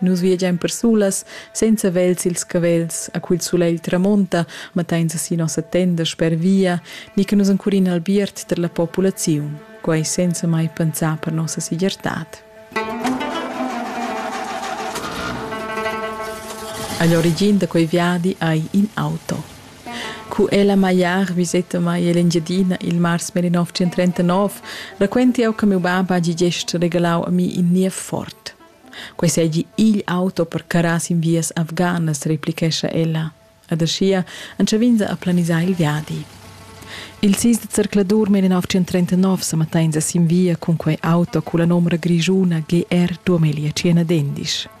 Nus viagein persulas senza vegl sils cavels, a cul sulegl tramonta, matteins si nossa tenda sper via, ni che nus encurin albiert per la populaziun, quei senza mai pensar per nossa segirtad. Agl origin da quei viadi ei in auto. Cu ella magliar viseta mai l'Engiadina il mars 1939, raquenti jau che miu bab hagi gest regalau a mi in niev fort. Quei seigi igl auto per carrar sin vias afganas, replichescha ella. Ed aschia entschav'ins a planisar il viadi. Il sis de zercladur 1939 sa matteins sin via cun quei auto culla nomra grischuna GR 2051.